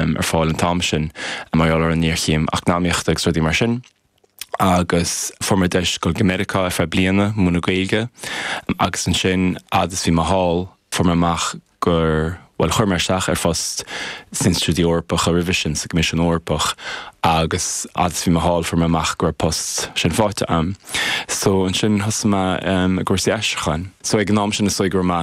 ar fáil an t-am sin mar gheall ar an ngéarchéim eacnamaíochta agus rudaí mar sin agus fuair mé deis dul go Meiriceá ar feadh bliana, múineadh Gaeilge agus ansin fhad is bhí mé thall fuair mé amach gur, bhuel chuir mé isteach ar phost sna hInstitiúidí Eorpacha roimhe sin, sa gCoimisiún Eorpach agus fhad is bhí mé thall fuair mé amach go raibh an post sin faighte a'm so ansin thosaigh mé i gcúrsaí aistriúcháin. So ag an am sin is dóigh go raibh mé,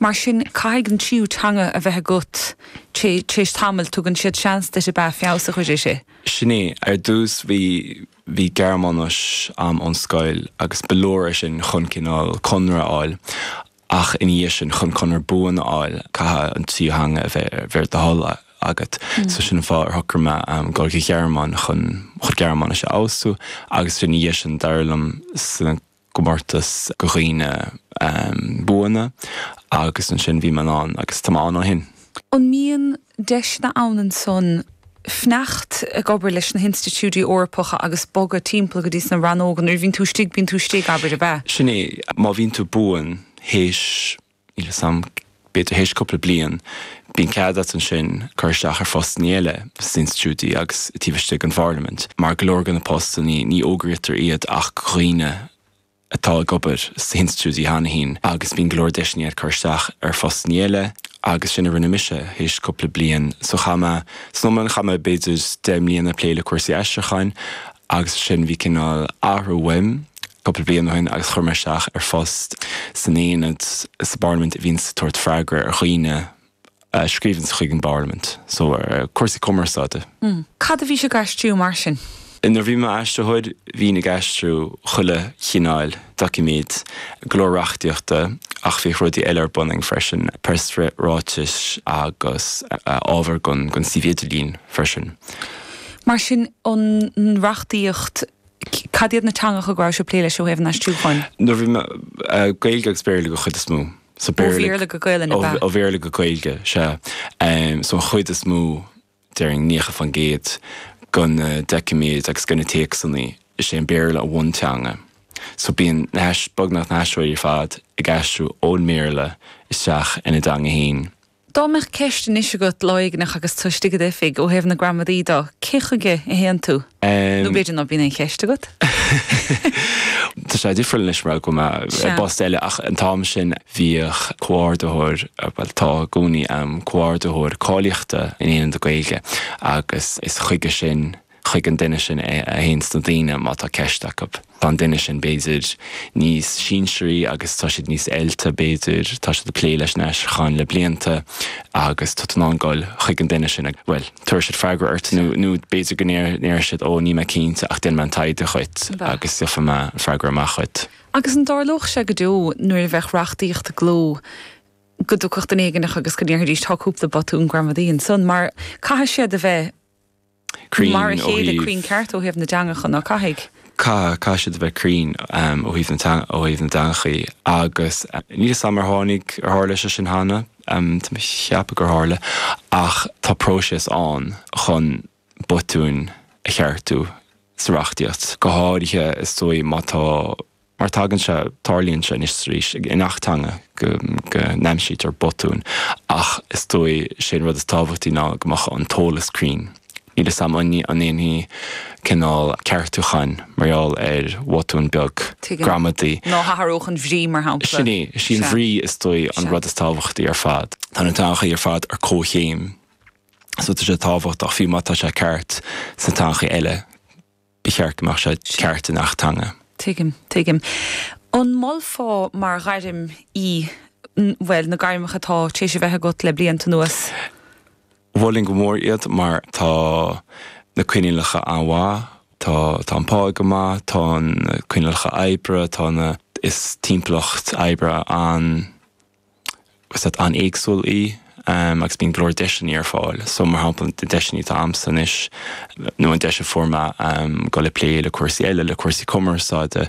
Mar sin, caithfidh an tríú teanga a bheith agat. Tréis tamaill, tugann siad seans duit ab ea feabhas a chuir uirthi. Sin é. Ar dtús bhí, bhí Gearmáinis a'm ón scoil agus ba leor é sin chun cineál conradh a fháil ach ina dhiaidh sin, chun conradh buan a fháil, caithfidh an tríú theanga a bheith ar, bheith ar do thoil agat. So sin an fáth ar shocraigh mé a ghoil go, gon Ghearmáin chun, chun Gearmáinis a fheabhsú agus ina dhiaidh sin d'éirigh liom sna, gcomórtas go dhaoine buana agus ansin bhí mé in ann agus tá mé ann ó shin. An mbíonn deiseanna ann ansan fanacht ag obair leis na hinstitiúidí Eorpacha agus bogadh timpeall go dtís na rannóga nuair a bhíonn tú istigh, bíonn tú istigh, abair, ab ea? Sin é, má bhíonn tú buan théis. Níl 'fhios a'm, b'fhéidir théis cúpla bliain bíonn cead a'at ansin cur isteach ar phostannaí eile sna hinstitiúidí agus taobh istigh den Pharlaimint mar go leor de na postannaí ní fhógraíotar iad ach go dhaoine atá ag obair sna hinstitiúidí cheana fhéin agus bíonn go leor deiseannaí a'at cur isteach ar phostannaí eile agus sin a rinne mise théis cúpla bliain so chaith mé, san iomlán chaith mé b'fhéidir deich mbliain a' plé le cúrsaí aistriúcháin agus ansin bhí cineál athrú uaim. cúpla bliain ó shin agus chuir mé isteach ar phost san aonad sa bParlaimint a bhíonns ag tabhairt freagra ar dhaoine a scríobhanns chuig an bParlaimint, so cúrsaí cumarsáide. Cad a bhí sibh ag aistriú mar sin? Nuair a bhí mé im aistritheoir bhínn ag aistriú chuile chineál doiciméad, go leor reachtaíochta ach bhíodh rudaí eile ar bun againn freisin, preasráitis agus ábhar gon suíomh idirlín freisin. Mar sin an reachtaíocht Cad iad na teangacha go raibh sibh ag plé leo ó thaobh an aistriúcháin? Nuair a bhí mé, Gaeilge agus Béarla go chuid is mó. So Ó Béarla, Bhéarla go Gaelainn, ab ea? ó Bhéarla go Gaeilge, sea. So an chuid is mó, déarfainn 90%, de na doiciméid agus de na téacsanna, is é an Béarla an bhunteanga. So bíonn na hais-, beagnach na haistritheoirí ar fad ag aistriú ón mBéarla isteach ina dteanga fhéin. Dá mbeadh ceist anois agat, lá éigneach, agus tú istigh i d'oifig, ó thaobh na gramadaí de, cé chuige a théann tú? Nó b'fhéidir ná bíonn aon cheist agat. Tá sé difriúil anois mar go bhfuil mé i bpost eile ach an t-am sin bhíodh comhordaitheoir, bhuel tá i gcónaí, comhordaitheoir cáilíochta in Aonad na Gaeilge agus is chuige sin, chuig an duine sin é a théanns daoine má tá ceist acu. Tá an duine sin, b'fhéidir, níos sinsearaí agus tá siad níos oilte, b'fhéidir, tá siad ag plé leis an aistriúchán le blianta agus tá tú in ann dul chuig an duine sin agus, bhuel, tabharfaidh siad freagra ort nó b'fhéidir go ndéarfaidh siad 'Ó, níl mé cinnte ach déanfaidh mé an taighde dhuit agus gheofaidh mé freagra amach dhuit. Agus an dtarlódh sé go deo nuair a bheadh reachtaíocht i gcló go dtiocfadh duine éigineach agus go ndéarfaidís 'Tá cúpla botún gramadaí ansan mar caithfidh siad a bheith Mar a chéile cruinn ceart ó thaobh na dteangachan, ná caithfidh? Caithfidh, caithfidh siad a bheith cruinn ó thaobh na teanga, ó thaobh na dteangachaí agus níl 'fhios a'm ar tháinig, ar tharla sé sin cheana, tá mé a' cheapadh gur tharla ach tá próiseas ann chun botúin a cheartú sa reachtaíocht, go háirithe is dóigh má tá. mar tagann sé, tarlaíonn sé anois is arís i ngach teanga go n-aimsítear botúin ach is dóigh sé an rud is tábhachtaí ná go mbeadh an t-eolas cruinn. Níl 'fhios a'm an ndéanfaí cineál ceartúcháin mar gheall ar bhotún beag gramadaí. Ní athródh an bhrí mar shampla. Sin é, sí an bhrí is dóigh an rud is tábhachtaí ar fad. Tá na teangachaí ar fad ar comhchéim so tá sé tábhachtach fiú má tá sé ceart sna teangachaí eile. ba cheart go mbeadh sé ceart i ngach teanga. Tuigim, tuigim. An molfá mar ghairm í, bhuel, na gairmeacha atá tar éis a bheith agat le blianta anuas? Mholfainn go mór iad mar tá na coinníollacha an-mhaith, tá an pá go maith, tá na coinníollacha oibre, tá na, is timpeallacht oibre an, Sách an-éagsúil í agus bíonn go leor deiseanna ar fáil. So, mar shampla, na deiseanna atá a'msa anois, nó an deis a fuair mé, um, dul ag plé le cúrsaí eile, le cúrsaí cumarsáide,